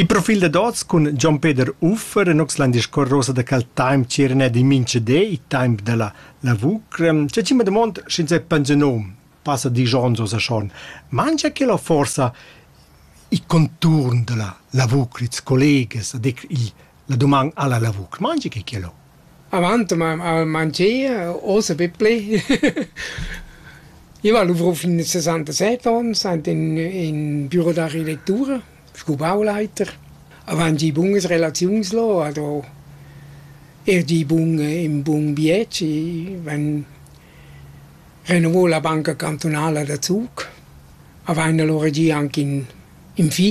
Il profil dad oz cun Gian Peder Uffer en Oxland discorrosa da cal time c'erna di minchedé il temp da la lavur. C'è ci domand sch'ins è pensionom, passa di Gian so Schon. Mangia che la forza il conturn della lavur, ils collegas, a dir il, la domanda alla lavur. Mangi che che lo? Avant m'hav mangia, ossa bipli. Io val luvro fin a sesantasett ons aint in in büro da redettura, scu bauleiter. Avant gi bunas relaziuns lò, ado eir gi bun ün bun biet, schi vegn renouvo la banca cantunala da Zug. Avaina lura gi anc ün ün fi.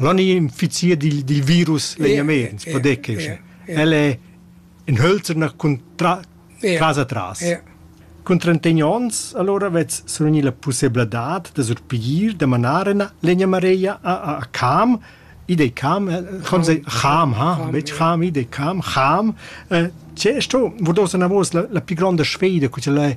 L'on infizier dil dil virus vegnaments podecas. El è in hölzerner cun tras atras. Cun trentegn onns alura vets survgni la pussebladad da surpigir da manar ina legna mareia a a Cham. Id ei Cham, chom sei Cham, ha, betg Cham, id ei Cham, Cham. Tge sto, vurdós anavos la la pli gronda sfida, co ch'el è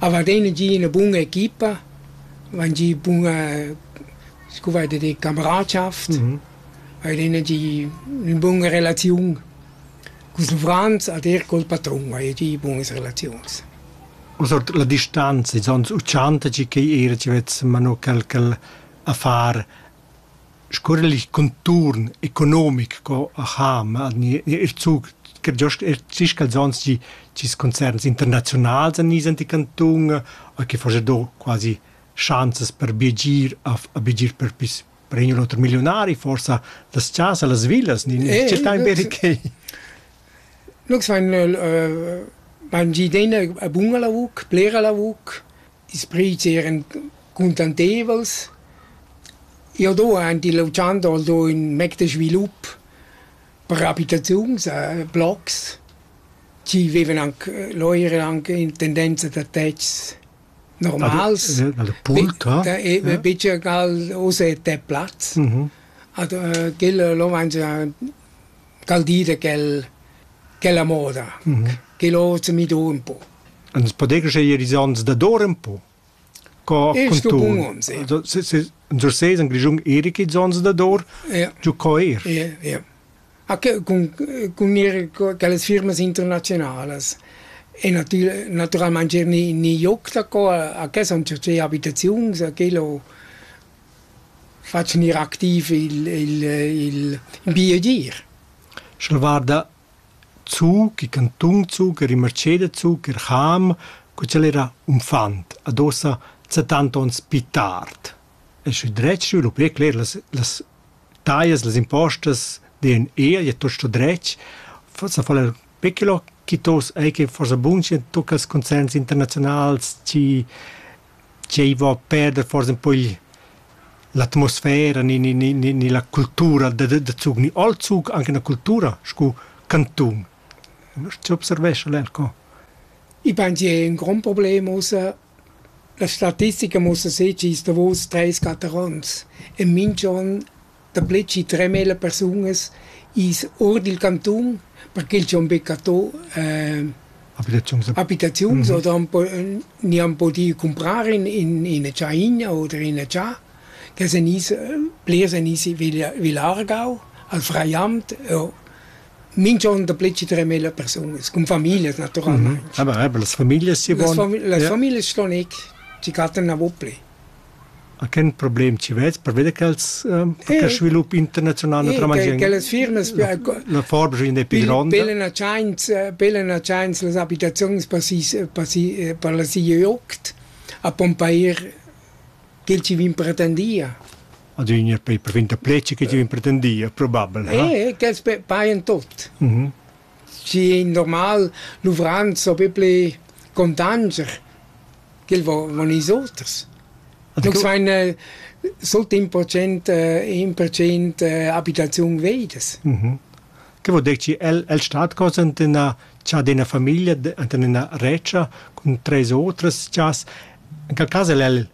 Avar ina gi ina buna equipa, vain gi buna scu vai da dir cameradschafт, hain ina gi ün buna relaziun culs uffrants ad eir col patrun haja gi bunas relaziuns. Ussa la distanza, ils ons uchanta tgi ch'ei era tg'avess mano quel ch'el a far Scural il conturn economic co a Cham ha eir zug che giost eir sis calzons chi chi's concerns internaziunals a niz ant il cantun e chi faja do quasi schanzas per biagir a biagir per pis per ün u l'oter milliunari forsa las chasa, las villas, tschertain be quai. Lux vain bain giü degna buna lavur, blera lavur. Ils prüts eran cuntanteivels. Jau do aint illa uchanda al do ün mec da svilup per abitaziuns, blocs chi vevan anc lò eran anc in tendenza da tetgs normals. Bicher gal uss è tet plaz. Ad quella lò vain già cal dir quel quella moda che l'hoz mi do ün po. Ans podegas eir ils ans dador ün po? Co contun? Unser seis in Grischun eir ils ans dador? Giù co eir? Ja, ja. Anche con, con mir quelle firme internazionales. E natur, naturalmente ni, ni joc da qua, a che sono certe abitazioni, a quello Fa gnir activ il il il ün bi agir. Sch'el guarda zu, che cantun zu, che Rimarceda zu, che Cham, co ch'el era unfant, adossa settanta ons pi tard. E sü dret sü lo pli cler las las taglias, las impostas deien eir, i a tuot sto dret. Forsa fa'l eir pechelò, chi tos ei che forsa bun schi tocca ils concerts internaziunals, chi Tgei vo a perder forsa un po il l'atmosfera ni ni ni ni ni la cultura da da da Zug ni all Zug anche la cultura sco cantun. Ti observescha l'Elco? I bain è un grond problem ussa. La statistica muossa sez gist davos treis, quatter ons. E minch'on Daplè chi tremela persunas i's our dil cantun perché els han be cattà ehm abitaziuns oder han po gnü han pudü cumprar in in ina tschaina oder ina cha che sun i's blers sun i's villa villa Aargau al Freiamt o minch'on daplè chi tremela persunas cun famiglias natüralmaing. Aber eben las Familias sie wohnen. Las famiglias ston eck, chi cattan navo plü. a quel problem ci vez per veder ch'els eh, svilup internazional naturalmente che las firmas la forgia è più grande pelena chance pelena chance las abitazioni per si per si per la si jocht a pompair che ci vin pretendia adüna per per finta pleci che ci vin pretendia probabel eh che paien tot mhm Schi ei normal, luvrands so be pli contanscher ch'el vo, vo nis oters. Nus vein eh, sut in procent, eh, in procent eh, abitaziun veidas. Mhm. Che vuol dir che el, el stat cosa ante una cha d'ina famiglia, ante una recia, con tres otras chas, in quel cas el, el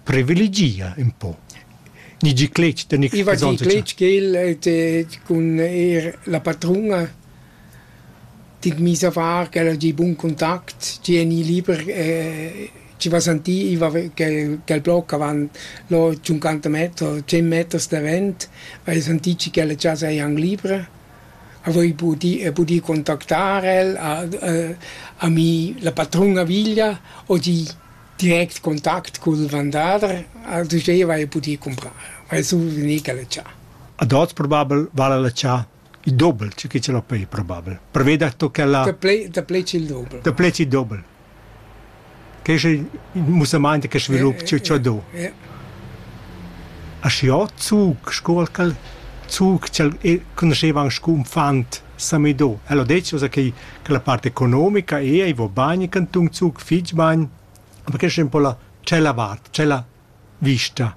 privilegia ün po. Ni gi cletg de nic. I va di cletg ch'el cun er la patruna dit mis a far che era di bun contact ti eni liber eh, ci va sentì va che che il blocco avanti lo 50 metri 100 metri da vent vai sentì che la casa è anche libera avevo potuto pudi contattare a, a, a mi la patrona villa o di Direct contact cul vendader al duzeva ei pudir cumprar, vai sur vegnir che la tschà. Ad oz probabel vala la tschà il dobel che che ce l'ho pei probabel. Preveda to ch'ella Daplè daplè il dobel. daplè il dobel. Che è il mussamaint che svilup che che do. Ja. A schi ho zug, scuol cal zug, ch'el conosceva anche un fant Samido. Ella detg ussa che che la part economica è ei vo bagn cantun Zug fitg bagn, ma che schem po la cella vart, cella vista.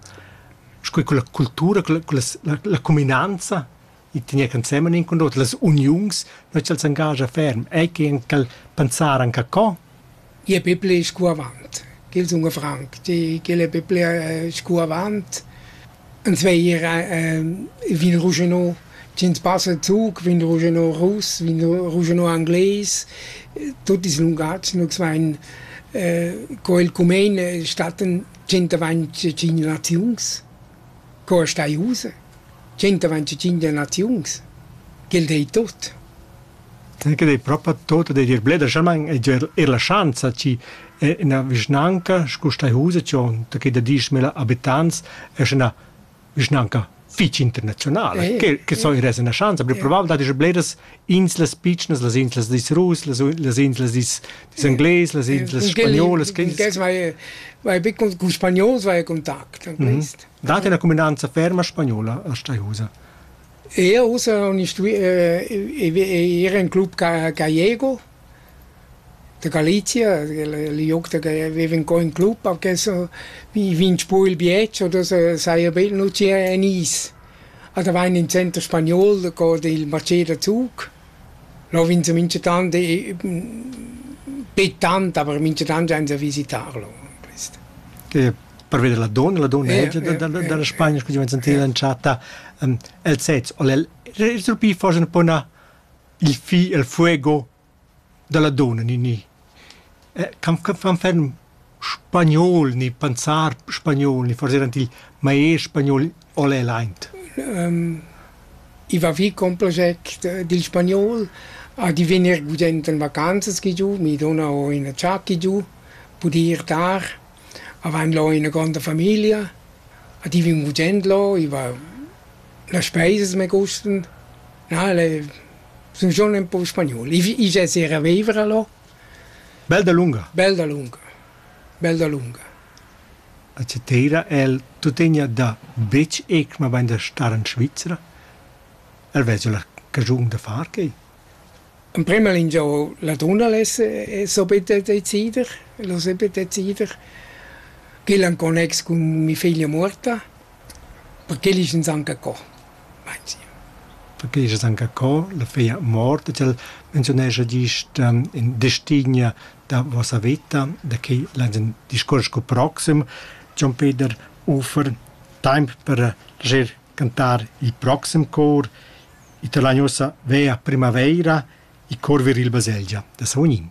Sco con la cultura, con la, la, la cuminanza i tegner ensemen in con l'oter, las uniuns, noi c'al s'engagia ferm, ei che anche pensar anche co, Gli'è be ple scu avant, ch'el sun franc, ch'el è be ple scu avant. Ins veglia vin ruschenò, sch'ins passa ün zuch, vin ruschenò russ, vin ruschenò angles. Tuot ils lungatgs nu's vain co el cumain stattan tschient avant tschient naziuns. Co as stai ussa? Tschentavan tschintg naziuns? Quel dei tut. Che dei propa tut da dir blederschamaing e dir er la schanza chi è üna vischnanca scu stai ussa giò'n da que da dieschmila abitants es üna vischnanca fich internaziunala. Quel que so ir esa 'na schanza, però probabel dad esser bleras inslas pitschnas, las inslas dis russ, las, las inslas dis, dis englais, las inslas spagnolas. Vai, vai be con, con spagnols vai a contact an quest. Mm -hmm. Date la cuminanza ferma spagnola a Steihusa? Io usa un era un club gallego Da Galizia, liug da che viv in co in club, perché so, mi vegn spu il bietsch oder so saja bel nu tgir en is. A da vain in center spagnol co il Mercedes Zug. Là vegn se minchatant bit tant, aber minchatant vain se a visitar là, quist. Che per veder la donna, la donna dalla Spagna, scu ti vain sentida entschatta, els sezs, el es propi forsa un po 'na il fi e'l fuego da la dunna ninì. Can fan ferm spagnol ni panzar spagnol ni forsa eran til maester spagnol o l'el aint? I va vi con proget dil spagnol a divegnir gudent en vacanzas chi giu. Mi duna ho ina tschacca giu, pudi ir tar. Avain lo ina gronda famiglia, a divin gudend lo, i va Las speisas me gustan, na el e sun schon ün po spagnol. I i giazerà a viver a là. Bel dalunga. Bel dalunga. Bel dalunga. A Chatera el tuttegna da betg eir mabain da star in Svizra. El vezza la caschun da far quai. Emprema lingiau la dunna less subit decider, el ho sempre decider, ch'el en connex cun mia figlia morta, perché el es insanca co, meinzi. Perché es insanca co, la figlia mort, e tg'el menziunescha gist in destignia da vossa veta, da che l'ais ün discuors cul proxim. Jon Peder offer taimp per leger cantar il proxim cor. Ita lain ussa veir a primavaira e curver il baselgia da Savognin.